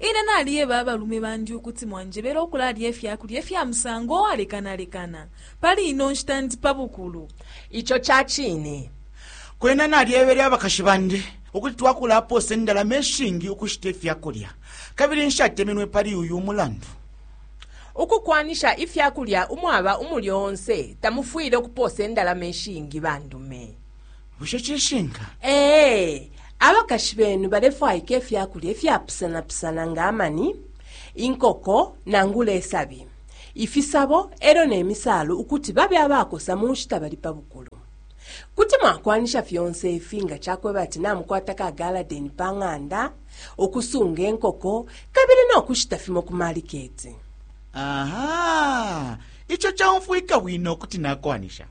Ine naliyeba abalume bandi ukuti mwanjebele ukulalya ifya kulya ifya musango uwalekanalekana. Pali ino nshita ndi pa bukulu. Ico ca cine. Kwena nalyebele abakashi bandi ukuti twakulapoosa indalama ishingi ukushita ifya kulya, kabili nshatemenwe pali uyu mulandu. Ukukwanisha ifya kulya umwaba umulyo onse tamufwile ukupoosa indalama ishingi bandume. bushe cishinka ee abakashi benu balefwaika ifya kulya ifyapusanapusana nga amani inkoko nangula isabi ifisabo e lyo ne misaalu ukuti babe abakosa mu nshita bali pa bukulu kuti mwakwanisha fyonse ifi nga cakweba ati namukwata ka galadeni pa ng'anda ukusunga inkoko kabili no kushita fimo ku maliketi aha ico caumfwika bwino kuti nakwanisha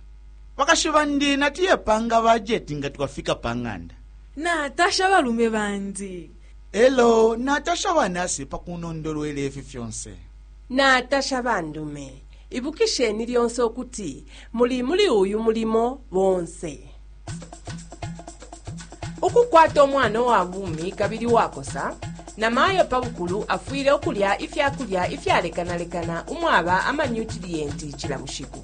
Bakashi bandi natuye panga bajeti nga twafika pa ng'anda. Natasha abalume bandi. E lyo natasha ba nasi pa kunondolwela ifi fyonse. Natasha bandume. Ibukisheni lyonse ukuti muli muli uyu mulimo bonse. Ukukwata umwana uwa bumi kabili uwakosa, namayo pa bukulu afwile ukulya ifya kulya ifyalekanalekana umwaba amanyutiliyenti cila bushiku.